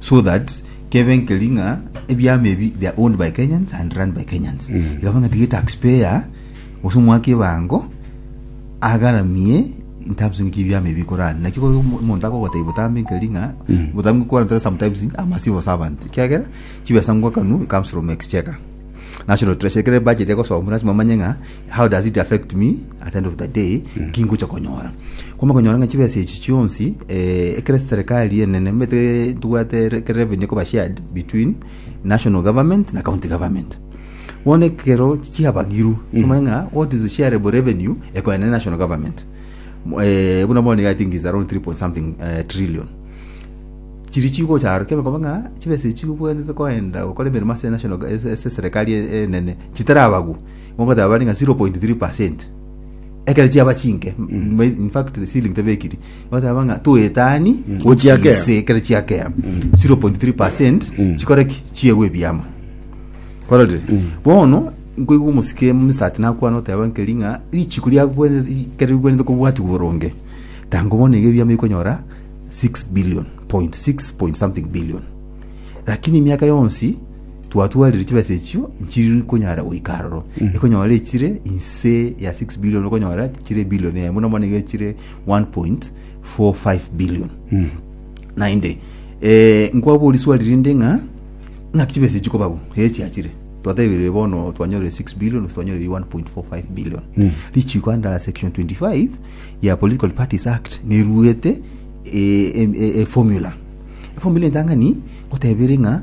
so that kebe nkeri ng'a ebiama ebi they are owned by Kenyans and run by Kenyans ikaba ng'a tiga taxpayer gose omwaki ebango agaramie in terms ng'iki ebiama ebi bikorana naki kore omo- omonto akogotebi botambe nkeri ng'a botambe gokwana tara sometimes a massive servant ekiagera chibesa ngoakanu it comes from exchequer national treasury ekere budget egosomwa lasima omanye ng'a How does it affect me at the end of the day ki ngocha konyora kwama konyora ng'a chibesa echi chionsi eh, ekere serikali enene mete tubwate re- ekere revenue ekoba shared between national government na county government bono ekero chiabagiru tomanye ng'a what is the shareable revenue ekoenda ne national government Mo- eh, buna bono i think is around 3 point something eh, trillion chiri chigocharo kebe koba ng'a chibesa echi obwanete koenda gokora emeremo ase national ase ase serikali enene chitarabagu Mokoteba bari ng'a 0.3%. Ekero chiaba chinke, m- in fact the ceiling tebekiri. Mokoteba ng'a toetani gochia kea. gochise ekero chiakea. 0.3% chikore ki? Chiegwe ebiama. Kororire. Bono nkoigwa omosike msati nakwana oteba nkeri ng'a richiko riagwene ekero rigwenerete kobwatigwa boronge. Tango bono iga ebiama bikonyora 6 billion point 6 point something billion. Lakini emiaka yonsi Twatwarire chibesa echio nchiri konyara goika aroro. Ekonyora echire inse ya 6 billion okonyora chire billion eye buna bono iga chire 1.45 billion. Naende eh, nkwabori swali rinde ng'a ng'aki chibesa echi koba bo ere chiachire twatebire bono twanyorire 6 billion gose twanyorire 1.45 billion richiko under section 25 ya political parties act neruete eh, em- eh, eh, formula efomula entang'ani gotebire ng'a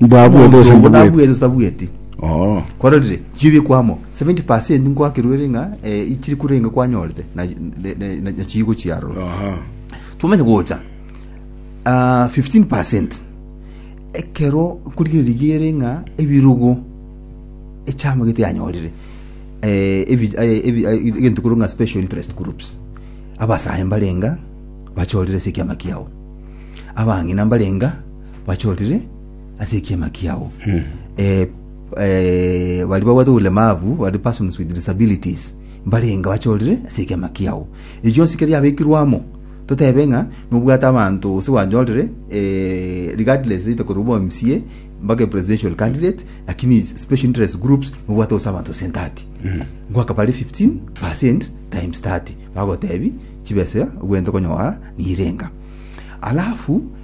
Mbwabwete Omonto gose obo mbwabwete? nabwete gose tabweti Oo. kwarorire chibi kwamo 70 nkwakerwere ng'a eh, ichiri kurenge kwanyorete na- na- na- na- nachigo chiaroro Aha. twamanya gocha ah, 15 ekero nkorigereria ere ng'a ebirugo echamagete yanyorire eh, ebi- eh, ebi- eh, egento korwa ng'a special interest groups abasae mbarenga bachorire ase ekiama kiao abang'ina mbarenga bachorire ase ekiama kiao Eh, eh, baria babwate obulemavu bari persons with disabilities mbarenge bachorire ase ekiama kiao ebi bionsi kere yabekirwe amo totebe ng'a nobwate abanto gose bwanyorire eh, regardless either korwa obo mca mpaka presidential candidate lakini special interest groups nobwate gose abanto gose entati ngoaka bare 15 percent times 30 bagotebi chibesa obwenerete konyora nirenga alafu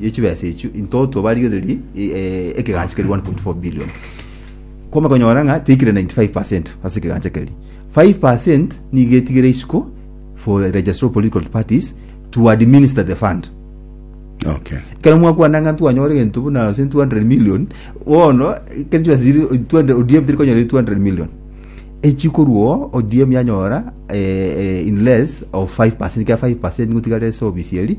ye chibesa echio into twabarigererie e- e- ekegancha keri 1.4 billion kwama konyora ng'a teikire 95% ase ekegancha keri 5% nigo etigire isiko for the registry of political parties to administer the fund okay kero mwakwana ng'a twanyore gento buna ase 200 million bono kero chibesa chiri 200 odm teri konyora 200 million echikorwo odm yanyora eh, eh, in less of 5% kera 5% nigo tigare ase obisi eri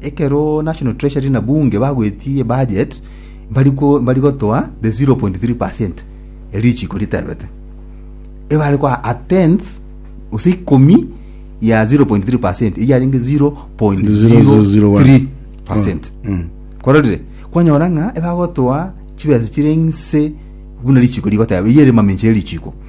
Ekero National Treasury na Bunge bagoetie ebudget, mbari ko- mbari gotoa the 0.3% ya richiiko ritebete. Ebare koa a tenth, gose ikomi ya 0.3%, eyio yarenge 0.03%. Kwarorire? Kwanyora ng'a ebagotoa chibesa chire nse buna richiiko rigoteba, eyio ere mamenche ya richiiko.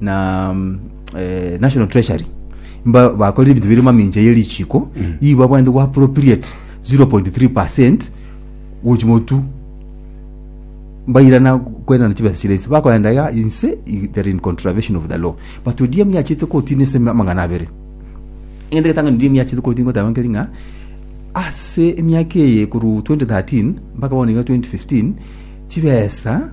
na eh, national treasury mba bakorire ebinto bire mamincha ye richiko igo babwanete go appropriate 0.3 percent gochimotu mbairana kwerana chibesa chire inse bakoenda ya inse i- they're in contravention of the law but odiemu yachete kotini ase amang'ana abere egento getang'ani odiemu yachete kotini goteba nkeri ng'a ase emiaka eye korwa 2013 mpaka bono iga 2015 chibesa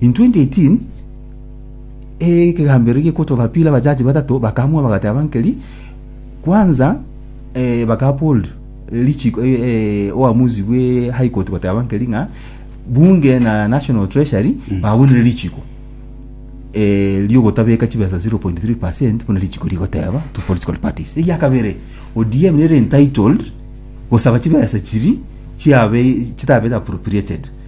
In 2018 ekegambero gekotoka pili abajaji batato bakamua bagateba nkeri kwanza eh, bakapold lichiko eh, eh, oamuzi bwe high court goteba nkeri ng'a bunge na national treasury babunire lichiko eh, riogotabeka chibesa 0.3 buna lichiko rigoteba to political parties egia kabere odm nere entitled gosaba chibesa chiri chiabe chitabete appropriated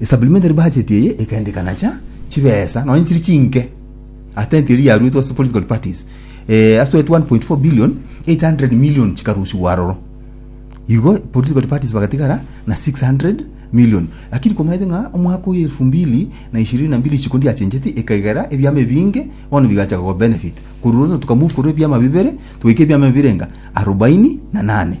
Esupplementary budget eye ekaendekana cha chibesa nonya chiri chinke atenti eri yaruetwe ase political parties eh, ase 1.4 billion 800 million chikarusiwa aroro igo political parties bagatigara na 600 million lakini komaete ng'a omwaka oyo elfu mbili na ishirini na mbili chikundi yachencheti ekaigera ebiama ebinge bono bigacha koba benefit korwa rono tukamove korwa ebiama bibere tugaika ebiama birenga arobaini na nane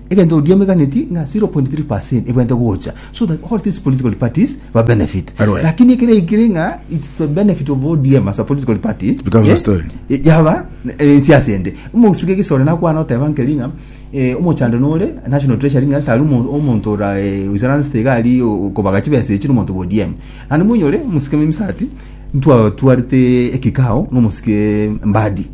Egento oria omeganeti ng'a 0.3% ebwente gocha so that all these political parties ba benefit. Alright. Lakini ekero yaikire ng'a it's the benefit of ODM as a political party. Becomes a eh, story. eh, yaba eh, ensiasa ende. Omosike gesore nakwana oteba nkeri ng'a eh, omochando nore national treasury ng'a sari omo- omonto ora eh, usaran state gari o- okobaga chibesa echi nomonto bo ODM. Naende monyore omusike memisa ati ntwa twarete ekikao nomosike mbadi.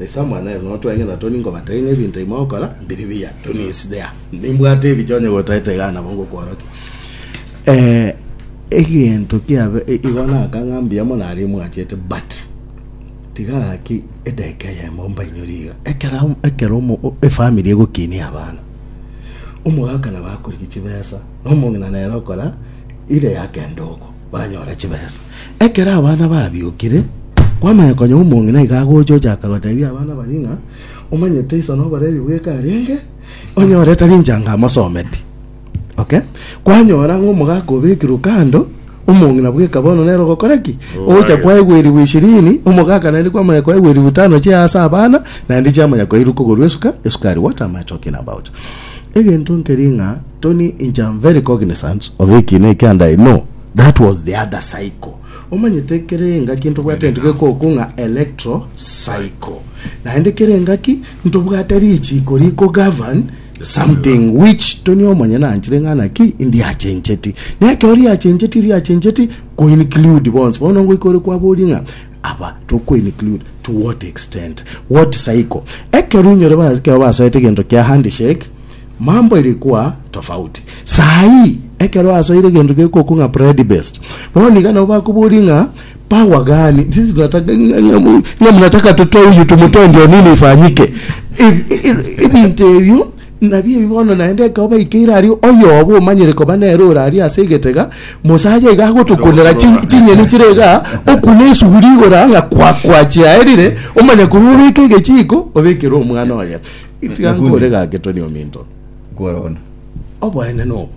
Esa mwana ere notweng'ena toni nkobataini ebinto imo okora mbiri biya toni is there nimbwate ebiche onye gotaete iga nabo ngokworokia eh egento kiabe i- igo nakang'a mbuya mono aria mwachete but tiga gaki edagika eyemo mbainyore iga ekera ekero omo o- efamiri egokinia abana omogaka nabo akorigia chibesa na omong'ina nere okora ire ya kende oko banyora chibesa. Ekero abana babiokire, kwamanya konya omong'ina iga agocha ochaka gotebia abana baria ng'a, Omanyete iso noborebi bweka arenge, onyore tari inche anga amosometi. Okay? Kwanyora ng'a omogaka obekirwe kando, omong'ina bweka bono nere ogokora ki? Ogocha kwaegwerigwa ishirini, omogaka naende kwamanya kwaegwerigwa itano chia ase abana, naende chiamanya kwairu kogorwa esuka, esukari, water, amatoke na mbaocho. Egento nkeria ng'a Tony inche am very cognizant of ekina eke and I know that was the other cycle omanyete kere engaki ntobwate entegeko oku ng'a electro cycle naende kere engaki ntobwate richiko riko govern something which Tony omonye nanchire ng'a naki ndiachencheti nekero riachencheti riachencheti ko include bonsi bono ngoika ore kwaboria ng'a aba toko include to what extent what cycle ekero inyore ba ekero basoete egento kia handshake Mambo irikwa tofauti. Saa ii, ekero asoire egento gekokwa ng'a Bread Best, bono iga nabo bakoboria ng'a, Power gani? Sisi tunataka ng'a mnataka tutoe huyu tumtoe ndio nini ifanyike? Ebinto ebio nabio ebi bono naende ekero baikeire aria oyobo omanyire koba nere ore aria ase egetega, mosacha iga agotukunera chinyeni chire iga, okune esuguri igoro ng'a kwa kwa chiaerire, omanye korwa obeke egechiiko obekere omwana oye. Tiga nkore gake Tony ominto. Nkorona. Oboene nobo.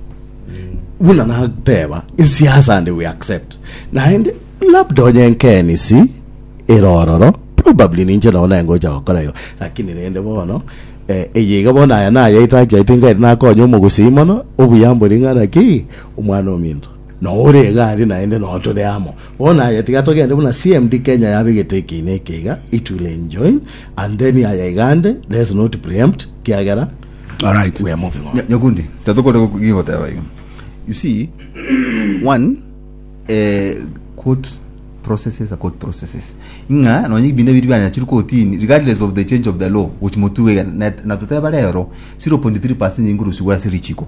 Buna nateba insiasa and we accept. Naende labda onye nkenisi erororo probably ninche nao nengocha gokora igo lakini rende bono eh, eye iga bono aya nayaito akiaito ngari nakonya omogusii mono obuya mbori ng'ana ki omwana ominto Na ore egari naende noo tore amo. Bono aye tiga togende buna CMD Kenya yabegete ekeina eke iga, it will enjoin and then aye igande let's not preempt kiagera Alright. we are moving on. Nya- Nyakundi, tatokore gu- gigoteba igo. You see, one, eh, court processes are court processes. Ng'a nonye binde biri bana chiri kotini regardless of the change of the law which motuwe na na toteba rero 0.3% nyingurusi gwa siri chiko.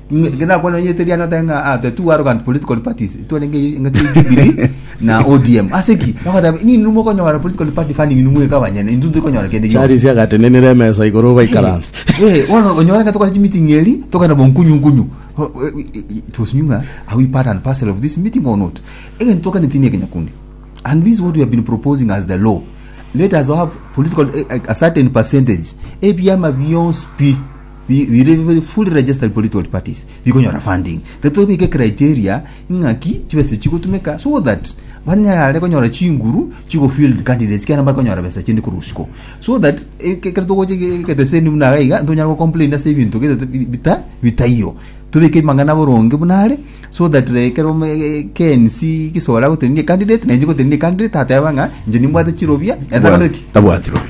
Inge nakwana onye teriana te ng'a ah, the two arrogant political parties twarenge ng'aki Jubilee na ODM ase ki bakoteba nini mokonyora political party funding inu mweka abanyene intu turi konyora kende gionsi charisi agatenenera emesa igoro baikaranse Eh, bono onyora ng'a tokore chimeeting eri tokana bonkunyu nkunyu Oh, eh, it was new ng'a are we part and parcel of this meeting or not egento tokaneti ni ekenyakundi and this is what we have been proposing as the law let us have political eh, a certain percentage ebiama bionsi pi bi- bire bi- fully registered political parties bikonyora funding tete bike criteria ng'aki chibesa chigotumeka so that banyare konyora chinguru chigofield candidates kiana bakonyora besa chinde korwa usiko so that eh, ke- kero togoche ge- geteseni buna iga iga ntonyara gocomplain ase ebinto getete bi- bita bitaiyo tobeke amang'ana boronge buna are so that eh, kero me- eh, KNC gisore agotebia candidate na inche ngotebia candidate ateba ng'a inche nimbwate chirobia Bwa- abwatire obe.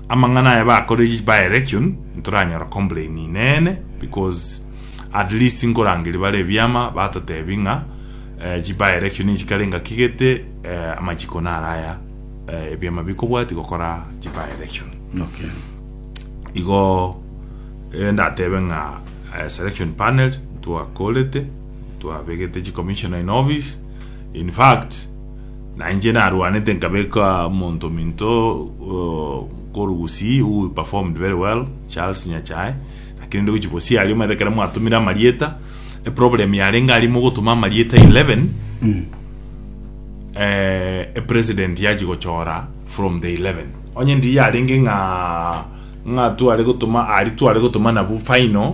Amang'ana aya bakoretie ba election ntoranyora complain nene because at least nkorangeria bare ebiama batotebi ng'a eh, chi by election chikare ngaki gete eh, amachiko nara aya eh, ebiama bikobwati gokora chi by election Okay. igo eh, ndatebe ng'a eh, selection panel twakorete twabegete chi commissioner in office in fact Na inche narwanete nkabeka omonto ominto uh, koru gusii who performed very well charles nyachae lakini ndi gochi bosi aria omanyete kere mwatumire amarieta eproblem yarenge aria mogotuma amarieta 11 eh, epresident yachi gochora from the 11 onye ndi yarenge ng'a ng'a tware gotuma ari tware gotuma nabu final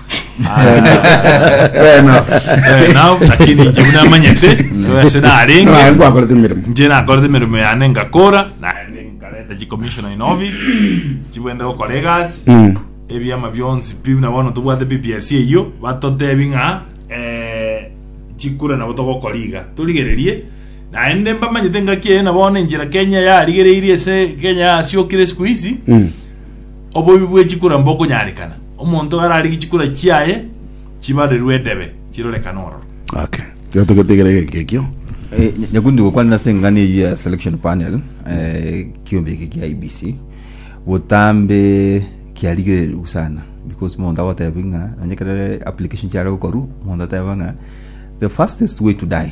Fair enough. Fair enough, lakini inche buna amanyete ase Naye narenge nkwakorete emeremo. inche nakorete emeremo yane ngakora naende nkareta chicommissioner in office chibwente gokora egasi Mm. ebiama bionsi pi buna bono tobwate pplc eyio batotebi ng'a eh, chikura nabo togokora iga torigererie naende mbamanyete ngaki eye na bono enchera kenya yarigereirie ase kenya yasiokire siku hizi Mm. Obobe bwe chikura mbokonyarekana, omonto ararige chikura chiaye chibarerwe edebe, chirorekane ororo. Okay. Kero togetegera egeke ekio. Eh, nya- nyakundi gokwanera ase eng'ana eyio ya selection panel eh, kiombe eke kia ibc botambe kiarigererigwe sana because monto agoteba ng'a nonye kere application chiare gokoru monto ateba ng'a the fastest way to die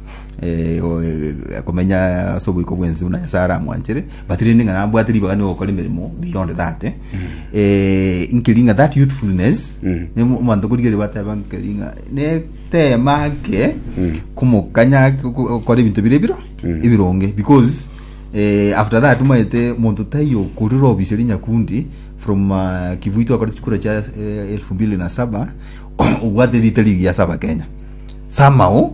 eh, o- eh, komenya ase oboiko bwensi buna nyasae aramwanchere but rende ng'a nabwate ribaga nigo gokora emeremo beyond that eh. Eh, nkeri ng'a that youthfulness Mm. ne mo- omonto korigeri bateba nkeri ng'a netema ake komokanya ake oko- okora ebinto bire biro ebironge because eh, after that maete monto taiyo okorire obiseri nyakundi from uh, kivui twakorete chikura chia eh, elfu mbili na saba obwate rita rigiya saba kenya somehow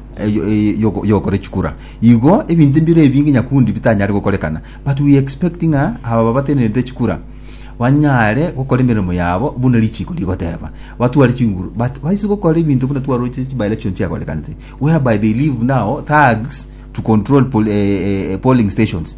yokora echikura. Igo ebinto mbire ebinge nyakundi bitanyare gokorekana but we expect ng'a aba babatenerete echikura banyare gokora emeremo yabo buna richiko rigoteba batware chinguru but baise gokora ebinto buna twaroche chi by-election chiakorekanete whereby they leave now thugs to control pol, eh, eh, polling stations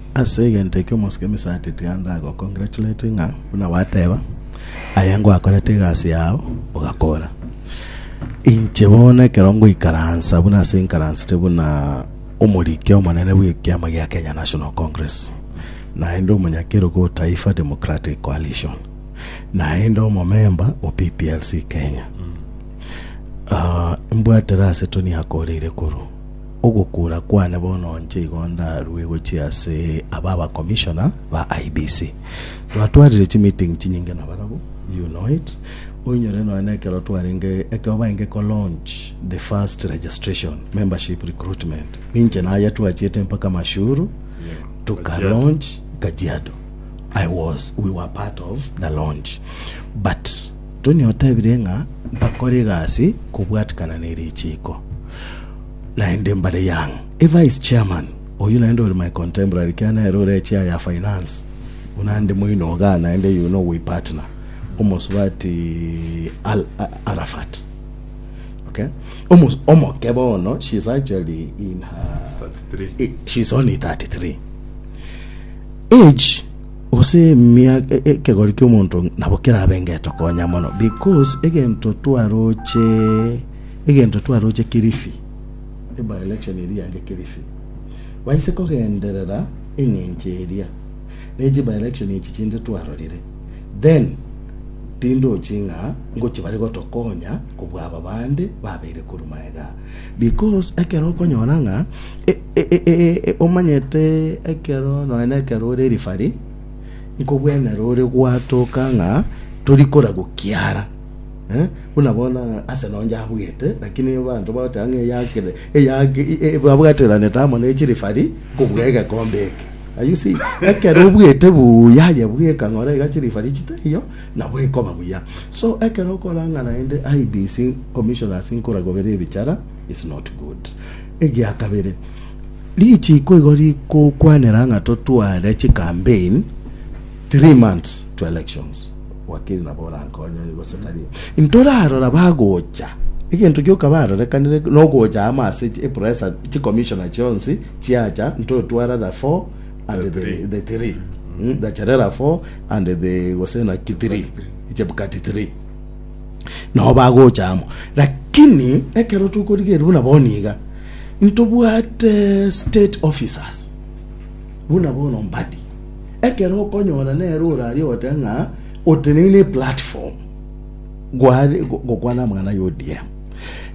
Ase egento ekio omosike Misati tiga ndagocongratulate ng'a buna gwateba, aye ngwakorete egasi yao, ogakora. Inche bono ekero ngoikaransa buna ase nkaransete buna omoriki omonene bw'ekiama gia Kenya National Congress, naende omonyakerogo o Taifa Democratic Coalition, naende omomemba o PPLC Kenya. Ah, mbwatera ase toniakoreire korwa. Ogokuura kwane bono inche igo ndarue gochia ase aba abakomishona ba IEBC. Twatwarire chimeeting chinyinge nabarabwo, you know it. Oinyore nonya nekero twarenge, ekero barenge ko launch the first registration, membership recruitment, ninche naye twachiete mpaka Mashuru, tuka launch Kajiado. I was, we were part of the launch. But. Tony otebire ng'a mbakore egasi kobwatikana ne richiiko naende mbare young evice chairman oyio naende ore my contemporary kiagera nere ore echair ya finance buna ande moinoga naende yuno owe partner omosubati Al Arafat okay Omos omoke bono she is actually in her 33 she is only 33 age Gose mia ekegori ki'omonto nabo kerabe ngeto konya mono, because egento twaroche egento twaroche Kilifi, eba election eria yange Kilifi, baise kogenderera eng'encho eria ne chiba election echi chinde twarorire, then tindochi ng'a ngochia bare gotokonya kobua aba bande babeire korwa maega aa. Because ekero okonyora ng'a omanyete ekero nonya na ekero ore referee, nkobwenera ore gwatoka ng'a tori kora gokiara eh, buna bono Arsenal onde abwete lakini abanto bagoteba ng'a eyakire eyake e- e- babwateranete amo ne chireferee kobua egekombe eke. Are you seeing? Ekero obwete buya aye bweka ng'ora iga chireferee chitariyo, Nabo ekoba buya. So ekero okoranga naende IEBC commissioners nkoragobera ebichara is not good. Egia kabere, richiiko igo rigokwanera ng'a totware chicampaign three months to elections. Wakiri nabo orankonye gose tari. Ntorarora bagocha. Egento gioka barorekanire nogocha amo ase epresa chicommissioner chionsi chiacha ntotwara the four and the, three. the three mm. the cherera four and the gosena ki three chebukati three nao bagocha amo lakini ekero tokorigeria buna boniga ntobwate state officers buna bono mbadi ekero okonyora nere orari ogote ng'a oteneine platform gware gokwana amang'ana ya odm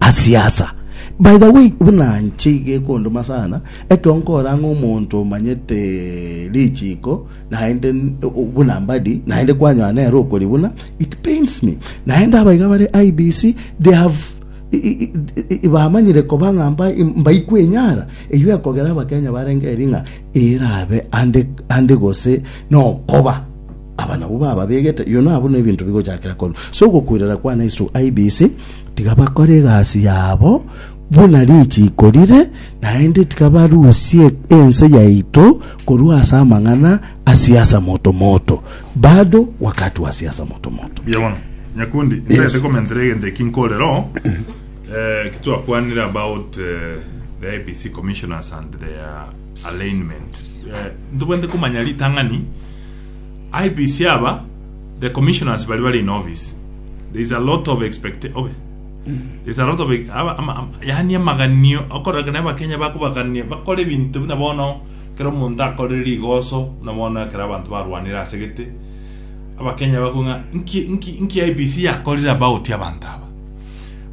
Asiasa. By the way, buna nche iga ekondoma sana, ekero nkora ng'a omonto omanyete richiko naende buna mbadi naende kwanyoa nere okori buna it pains me. Naende abaiga bare IEBC they have bamanyire koba ng'a mbaikwe enyara eyio ekogera abakenya barenge eri ng'a erabe ande gose nokoba Aba nabwo bababegete, Yono abwo nebinto bigochakera korwa ase ogokoirera kwane ase isugu IBC, tiga bakore egasi yabo buna richiiko rire, naende tiga barusie ense yaito korwa ase amang'ana a siasa motomoto. Bado wakati wa siasa motomoto. Mbuya bono. Nyakundi, ntagete Yes. komentera egento eki nkorere oo. Eh, eki twakwanire about eh, the IEBC commissioners and their alignment eh, ntobwente komanya ritang'ani IBC aba the commissioners bari bari in office there is a lot of expect obe there is a lot of aba, ama, ama, yani amaganio okoraga na abakenya bakobagania bakora ebinto buna bono kera omonto akorire rigoso na bono kera abanto barwanire ase gete abakenya bakong'a nki nki nki IBC yakorire about abanto aba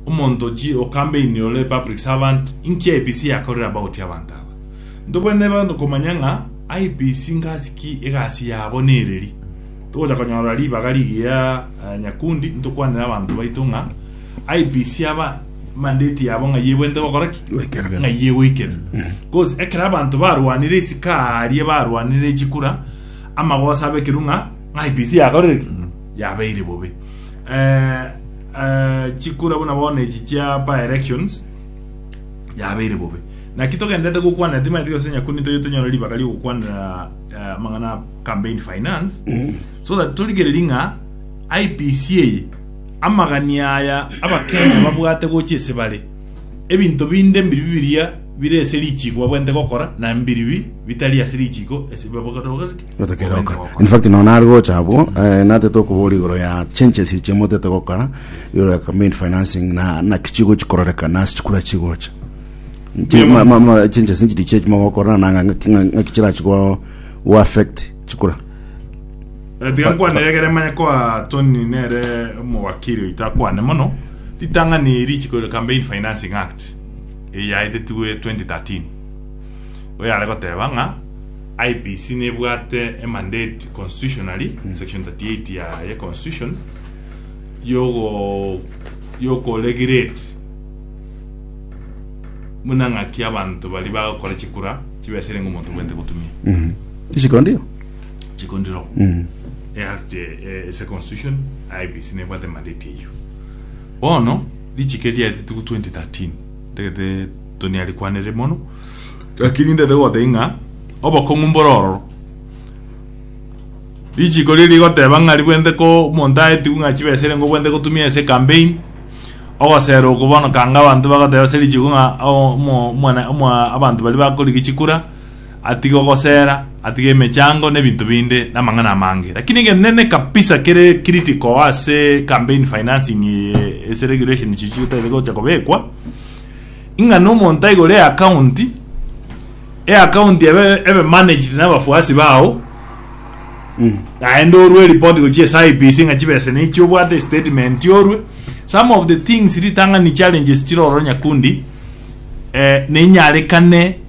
omonto chi okambeini ore public servant inki IPC yakorire about abanto aba nto bwene ebe komanya ng'a IPC ngasi ki egasi yabo nereri togocha konyora ribaga rigiya eh, nyakundi ntokwanire abanto baito ng'a IPC aba mandate yabo ng'a yebwente gokora ki Goikera. ng'a yegoikera bcause ekero abanto barwanire isiko aria barwanire chikura amagosa abe ekero ng'a ng'a IPC yakorire ki yabeire bobe Eh, eh, chikura buna bono echi chia by elections yabeire bobe naki togendete gokwana timaeti gose nyakuni toye tonyore ribaga riogokwanera eh, mang'ana campaign finance so that torigereri ng'a IPC eye amagani aya abakenya babwate gocha esebare ebinto binde mbiri bibiria bire ase richiko babwente gokora na mbiri bi bitari ase richiko ase babwate gokora Gotakeroka. In fact no nari gocha abwo eh, natete okobora igoro ya changes iche motete gokora igoro ya campaign financing na na kichigo chikororeka na chikura chigocha Chi- ma- ma- ma- changes nchiri chie mogokora na nga- nga- nga- nga kichira chigo go affect chikura Eh, tiga nkwane egere manye kwa toni nere omowakiri oito akwane mono ritang'ani eri chikore campaign financing act eyaetetigwe 2013 oyo are goteba ng'a IEBC nebwate emandate constitutionally, section 38 ya ye constitution, yogo yoko regulate buna ng'aki abanto bari bagokora chikura chibesere ng'a omonto obwente gotumia Mm. Isiko ndio. chikondiro Mm. eact ase constitution IEBC nebwate mandate eyio bono richiko riaetete 2013 Ntagete Tony arikwanere mono, lakini ntagete gobataria ng'a obokong'u mbore ororo. Richiko riria rigoteba ng'a ribwente ko omonto aetigwe ng'a chibesa erengo obwente gotumia ase ecampaign, ogosera oko bono kanga abanto bagoteba ase richiko ng'a omo omwana omo abanto baria bakorigia chikura, atige ogosera, atige emechango na ebinto binde na amang'ana amange. Lakini egento nene kabisa kere critical ase campaign financing eye ase regulation chichio chitagete gocha kobekwa, ing'a na omonto aigore eaccount, eaccount ebe ebe managed na abafuasi bao, naende orwe eripoti gochia ase IEBC ng'a chibesa na echi obwate statement orwe. Some of the things ritang'ani challenges chire ororo Nyakundi, eh, ninyarekane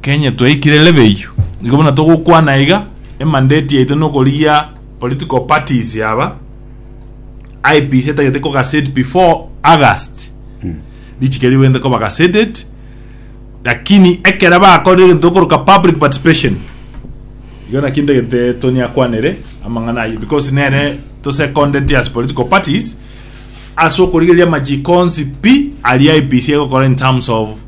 Kenya twaikire lebeiyo igo buna togokwana iga emandate yaito nokorigia political parties aba IEBC etagete ko gassette before August richiko erio bagende koba gassetted lakini ekero bakorire egento gokoroka public participation igo naki ntagete Tony akwanere amang'ana ayio because nere to seconded as political parties ase okorigereria amachikonsi pi aria IEBC egokora in terms of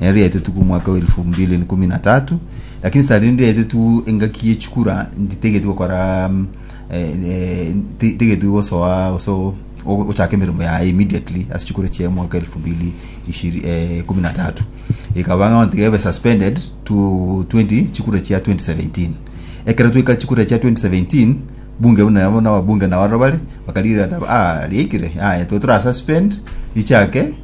nere riaetetwe omwaka elfu mbili na ikumi na tatu lakini saa rindi riaetetwe engaki yechikura nditegeti gokora mm, eh, eh, ti- tigeti gosoa oso ochaka emeremo yaye immediately ase chikura chia omwaka elfu mbili ishiri- eh, ikumi na tatu ikaba ng'a ontiga ebe suspended to 20 chikura chia 2017 ekero tweka chikura chia 2017 bunge buna yabo na wabunge na waro bari bakarigira ata ah riaikire ah eto tora suspend richake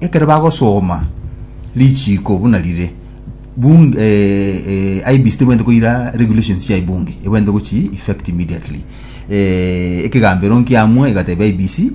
Ekero bagosoma richiiko buna rire, Bunge, eh, eh, IEBC tebwenerete koira regulations chia Bunge, ebwenerete gochi effect immediately. Eh, ekegambero nkiamwe egatebia IEBC,